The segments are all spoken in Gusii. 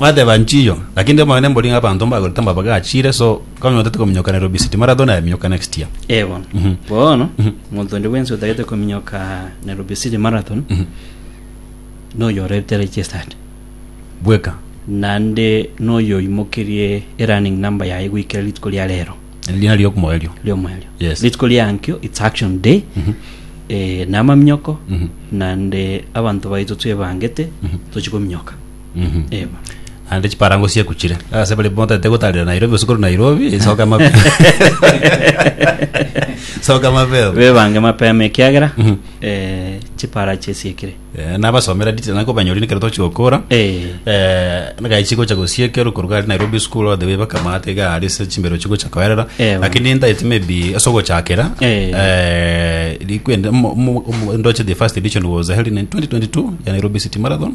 Mwateba nchiyo, lakini timomanya nembori ng'a abanto mbagorete amabaga achiire, so konya otagete kominyokanera obisiti, marathon nayeminyoka next year. Eh, bono Mhm. bono Mhm. omonto onde bwensi otagete kominyoka na Rubisiri Marathon Mhm. noyo orete registered Bweka. naende noyo oimokerie erunning number yaye goikera rituko ria rero Erina riokomoerio. riomoerio Yes. rituko riankio its action day Mhm. eh, na amaminyoko Mhm. naende abanto baito twebangete Mhm. tochi kominyoka Eba. naende chiparango siakuchire ase bari motaete gotarera nairobi gose korwa nairobi soka mabe soka mabeo bebange mapema ekiagera Mhm. eh, chipara chisiekire Eh, nabasomera detail nako banyori nekero tochigokora Eh. nagachi gocha gosiekero koruga ari nairobi school all the way bakamata iga ari se chimbero chigocha koerera Ewa. lakini entaiti maybe ase ogochakera Eh. eh, likwende mo- mo- mo- ndoche the first edition was held in 2022 ya nairobi city marathon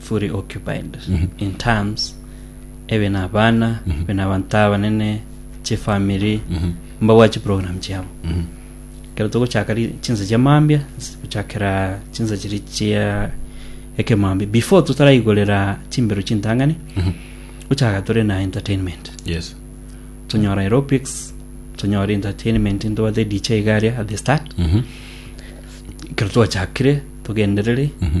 fully occupied in terms ebe na abana ebe na abanto abanene chifamiri mbagwa chiprogram chiabo kero togochaka ri- chinsa chia mambia nse- gochakera chinsa chiri chia ekemambia before totaraigorera chimbero chintang'ani gochaka tore na entertainment yes tonyora aerobics tonyora entertainment ntobate dj iga aria at the start Mhm. ekero twachakire togenderere Mhm.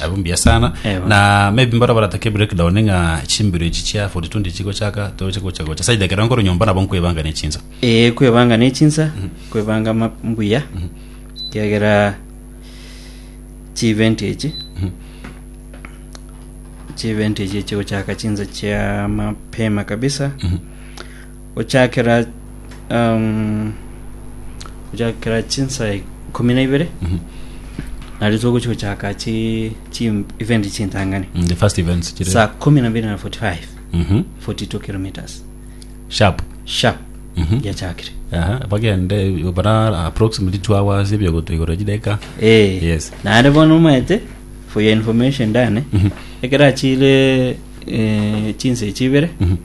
Nabo mbuya sana Ewa. na maybe mbara baratake breakdown ng'a chimbiro echi chia 42 chigochaka toche gocha gocha saida ekero nkoro nyomba nabo nkwebanga ne chinsa ee kwebanga ne chinsa kwebanga ma- mbuya kiagera chievent echi chievent echi chigochaka chinsa chia mapema kabisa gochakera um, gochakera chinsa ikumi na ibere nario togochi gochaka chi chi event chintangani Mm, the first events chire saa kumi na mbiri na 45 Mhm. 42 kilometers sharp sharp Mhm. yachakire Aha, bagende bara approximately two hours ebyo gotoigora chideka Eh, Yes. naare bono omaete for your information dane ekero achire eh, chinsa echibere Mhm.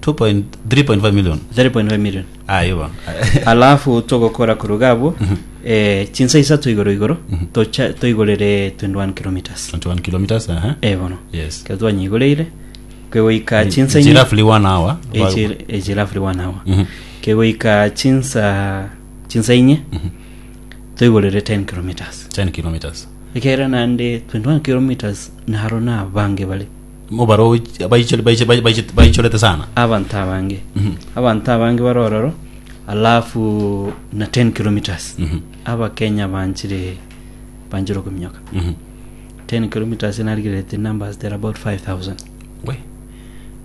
2 point- 3.5 million 3.5 million ah igo alafu togokora koruga abwo eh, chinsa isato igoro igoro tocha- toigorere 21 kilometers 21 kilometers aha Eh, bono yes ekero twanyigoreire kegoika chinsa It's roughly one hour echirafri one hour Mhm. kegoika chinsa chinsa inye toigorere 10 kilometers 10 kilometers ekere naende 21 kilometers naro nabange bare Obaroochi abaichori- baiche- bai- baiche- baichorete sana. abanto abange Mhm. abanto abange bare ororo alafu na 10 kilometres Mhm. abakenya banchire banchire okominyoka Mhm. 10 kilometres narigerete numbers there are about 5000 We.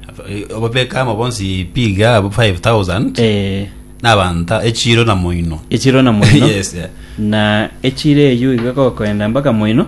Aba- eh, Ababeka amo bonsi piga abo 5000 eh nabanta echiro na moino. echiro na moino Yes, yeah. na echiro eyo igakokoenda mpaka moino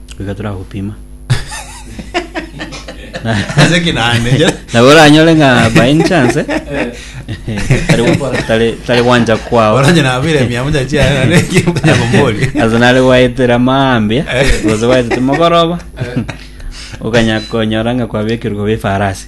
Goika toragopima. Ase ki naende? Nabo oranyore ng'a by any chance eh, tari tari- tari gwanja kwao. Oranje nabire mia moja chiaye na neki manya kombori. Ase nare gwaetera mambia gose gwaetete mogoroba okanya konyora ng'a kwabekerwa koba efarasi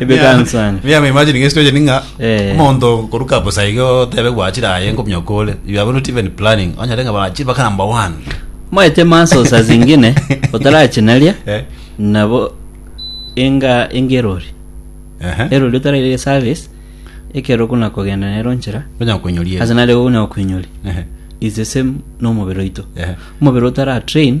Ebe kansani. Me am imagining a situation nga Eh. omonto koruka bosa iga otebe gwachire aye nkomya okore you are not even planning onyore nga bachi baka number one Moete maso saa zingine otarachinaria Eh. nabo enga enga erori Ehe. erori otaraire service ekero kuna kogenda nero nchera Onya konyoria ase nare gonya koinyori Ehe. is the same nomobere oito Ehe. omobere otara train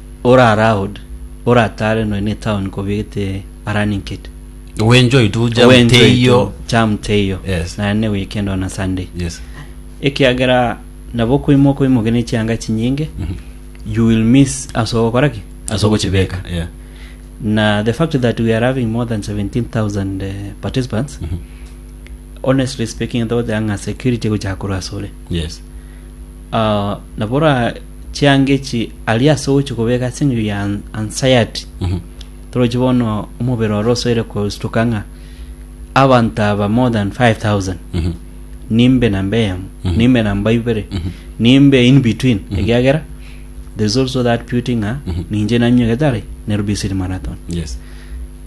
Ore aloud, ore atare nonya ne town kobegete a running kit. We enjoy tu jam We enjoy teiyo. to jam teiyo. Yes. Naye ne weekend ona Sunday. Yes. Ekiagera nabo okoimoka okoimoke ne chianga chinyinge, Mhm. you will miss ase ogokora ki? Ase ogochibeka. Yeah. Na the fact that we are having more than 17,000 eh, participants, Mhm. honestly speaking, though the anga security gochaka korwa ase ore. Yes. ah, nabora chianga echi ari ase ogochi kobeka ase eng'encho ya an- anxiety Mhm. torochi bono omobere oro osoire kostuka ng'a abanto aba more than 5000 Mhm. nimbe namba eyemo Mhm. nimbe namba ibere Mhm. nimbe in between Mhm. ekiagera there's also that beauty ng'a Mhm. ninche nanyuegete are nairobi city marathon Yes.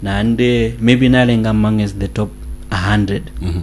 naende maybe narenga among as the top 100 Mhm.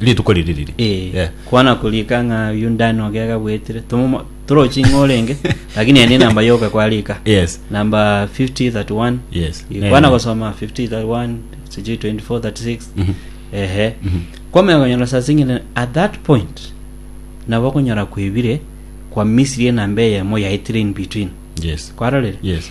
Rituko riri riri. Eh, Yeah. kwana kurika ng'a uyu ndani ogega bwetire Tomomo- torochi ng'a orenge lakini ene namba yoka kwarika Yes. namba 5031 Yes. Eh, kwana Eh. gosoma 5031 sijui 2436 Mhm. ehe Mhm. kwamenya konyora saa zingine at that point nabo konyora kwebire kwa misiri enamba eyemo yaitire in between Yes. kwarorire Yes.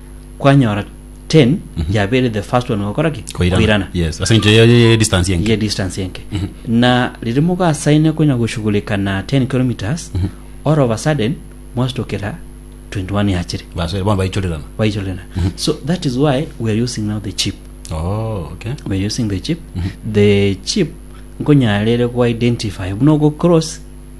kwanyora 10 yabere the first one gokora ki koirana yes ase encho ye- ye- ye distance enke ye distance enke na riri mogasaine konya goshughulika na 10 kilometers all of a sudden mwastokera 21 yachire basore bono baichorerana baichorena so that is why we are using now the chip oh okay we are using the chip the chip nkonyarere go identify buna go cross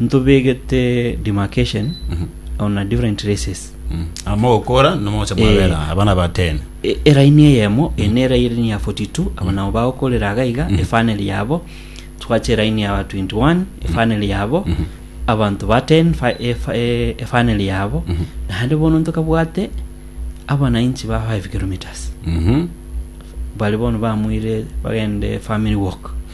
ntobegete demarcation on a different races amogokora nomogocha mwabera Eh. abana ba 10 E- eraini eyemo eye nera eraini ya 42 abo nabo bagokorera iga iga efaneli yabo twache eraini ya 21 efaneli yabo abanto ba 10 fa- efa- e- efaneli yabo naende bono ntokabwate abananchi ba 5 kilometers Mhm. bari bono bamwire bagende family walk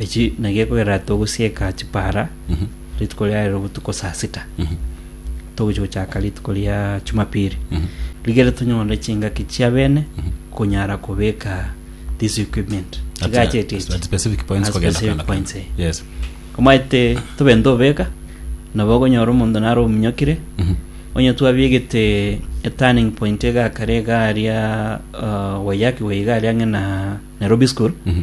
Eki nagiekogera togosieka chipara rituko ria rero botuko saa sita togochi gochaka rituko ria chumapiri rigere tonyore chingaki chia bene konyara kobeka this equipment At- chigacheti at- at specific points At kogenda specific kogenda points, eh. kogenda. Yes. omaete tobe ntobeka nabo okonyora omonto nare omunyokire Mhm. onye twabigete eturning point egakare egari ya uh, waiyaki waigari ang'e na nairobi school Mhm.